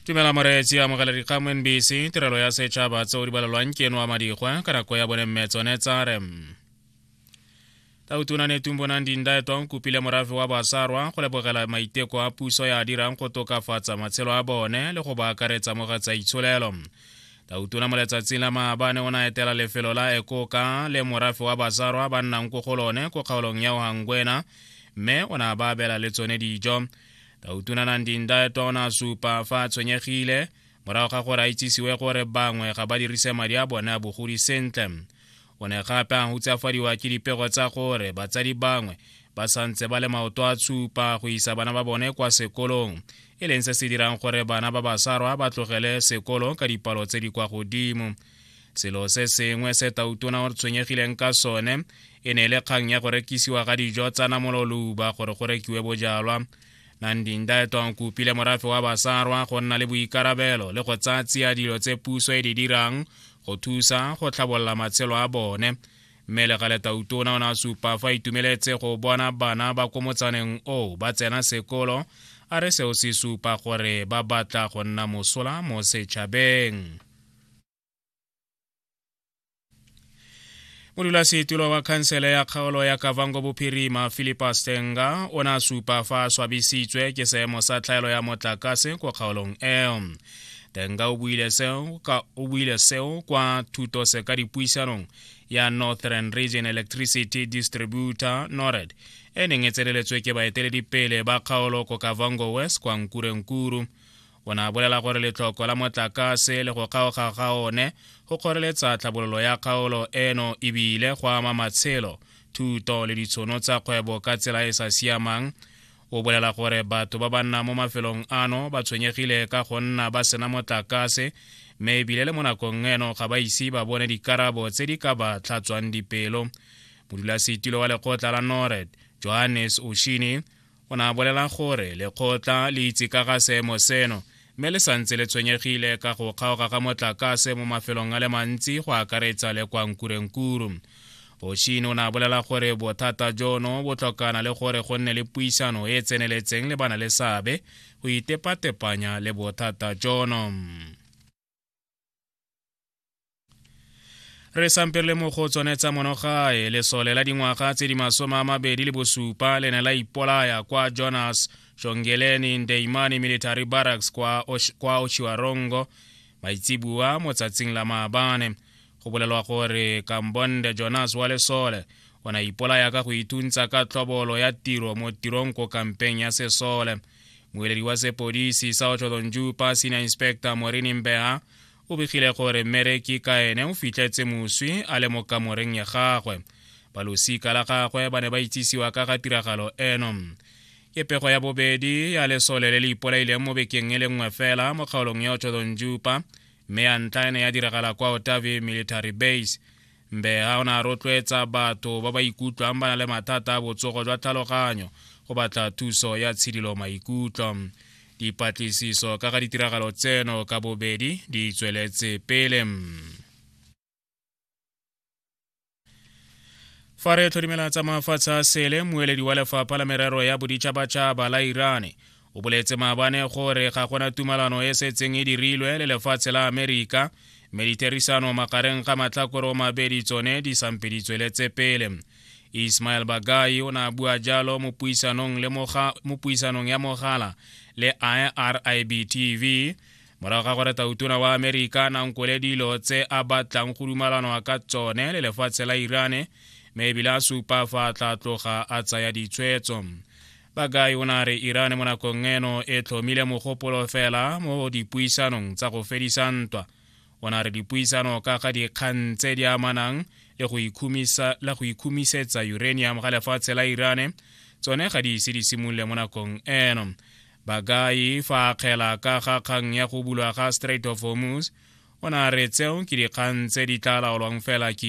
tumela moreetsi amogela dikgang mo nbc tirelo ya setšhaba tseo di balelwang ke eno wa madikgwa ka nako ya bone mme tsone tsare tautona ne tumbonang dindaetwa o kopile morafe wa basarwa go lebogela maiteko a puso ya dirang go tokafatsa matshelo a bone le go ba akaretsa mo ga tsa itsholelo tautona mo letsatsing la maabane o na etela lefelo la ekoka le morafe wa basarwa ba nnang ko go lone ko kgaolong ya ohangwena mme o ne a ba abela le tsone dijo ka utunana ndinda tona supa fa a tshwenyegile morago ga gore a itsisiwe gore bangwe ga ba dirise madi a bone a bogodi sentle o ne gape a hutsafadiwa ke dipego tsa gore batsadi bangwe ba santse ba le maoto a tshupa go isa bana ba bone kwa sekolong e leng se se dirang gore bana ba basarwa ba tlogele sekolo ka dipalo tse di kwa godimo selo se sengwe se tautona o re tshwenyegileng ka sone e ne e le kgang ya go rekisiwa ga dijo tsa namololuba gore go rekiwe bojalwa nandinda etong kopile morafe wa basarwa go nna le boikarabelo le go tsaya tsia dilo tse puso e di dirang go thusa go tlhabolola matshelo a bone mme le gale tautona o ne a supa fa itumeletse go bona bana ba ko motsaneng oo ba tsena sekolo a re seo se supa gore ba batla go nna mosola mo setšhabeng modulasetilo wa khansele ya kgaolo ya kavango bophirima philipa stenga o ne a supa fa a swabisitswe ke seemo sa tlhaelo ya motlakase kwa kgaolong eo tenga o buile seo ka o buile seo kwa thuto se ka dipuisanong ya northern region electricity distributor nored e neng e tseneletswe ke baeteledipele ba kgaolo ko kavango west kwa nkurenkuru o ne a bolela gore letlhoko la motlakase le go kgaoga ga one go kgoreletsa tlhabololo ya kgaolo eno ebile go ama matshelo thuto le ditshono tsa kgwebo ka tsela e e sa siamang o bolela gore batho ba ba nnang mo mafelong ano ba tshwenyegile ka go nna ba sena motlakase mme ebile le mo nakong eno ga ba ise ba bone dikarabo tse di ka ba tlhatswang dipelo modulasetilo wa lekgotla la nored johannes oshini o ne a bolela gore lekgotla le itse ka ga seemo seno mme le santse le tshwenyegile ka go kgaoga ga motlakase mo mafelong a le mantsi go akaretsa le kwa nkurenkuru boshine o ne a bolela gore bothata jono bo tlhokana le gore go nne le puisano e e tseneletseng le bana le seabe go itepatepanya le bothata jono re sampele mo go tsone tsa monogae lesole la dingwaga tse di masome a mabedi le bosupa le ne la ipolaya kwa jonas shongeleni ndeimani military barracks kwa, Osh, kwa oshiwarongo maitsibua mo tsatsing la maabane go bolelwa gore kambonde jonas wa lesole o ne ipolaya ka go ituntsa ka tlhobolo ya tiro mo tirong ko kampeng ya sesole moeledi wa sepodisi sa otlholonju pa senior inspector morini mbeha o begile gore mmereki ka ene o fitlhetse moswi a le mo kamoreng ya gagwe balosika la gagwe ba ne ba itsisiwa ka ga tiragalo eno ke pego ya bobedi ya lesole le le ipolaileng mo bekeng e le nngwe fela mo kgaolong ya otlholonjupa mme ya ntlha e ne ya diragala kwa otavi military base Mbeha o ne a rotloetsa batho ba ba ikutlwang ba na le mathata a botsogo jwa tlhaloganyo go batla thuso ya tshidilo maikutlo. Dipatlisiso ka ga ditiragalo tseno ka bobedi di tsweletse pele. fa re tlhodimela tsa mafatshe a sele moeledi wa lefapha la merero ya boditšhabatšhaba la irane o boletse maabane gore ga gona tumalano e setseng e dirilwe le lefatshe la amerika mme ditherisano magareng ga matlhakore o mabedi tsone di sampeditswe le tsepele ismael bagai o ne a bua jalo mo puisanong ya mogala le irib tv morago ga gore tautona wa amerika nankole dilo tse a batlang go dumalanwa ka tsone le lefatshe la irane mme ebile a supa fa a tla tloga a tsaya ditshwetso Bakai o ne a re Iran mo nakong eno e tlhomile mogopolo fela mo dipuisanong tsa go fedisa ntwa. O ne a re dipuisano ka ga dikgang tse di amanang le go ikhumisetsa uranium ga lefatshe la Irane tsone ga di ise di simolole mo nakong eno. Bakai fa a kgela ka ga kgang ya go bulwa ga Strait of Hormuz, o ne a re tseo ke dikgang tse di tla laolwang fela ke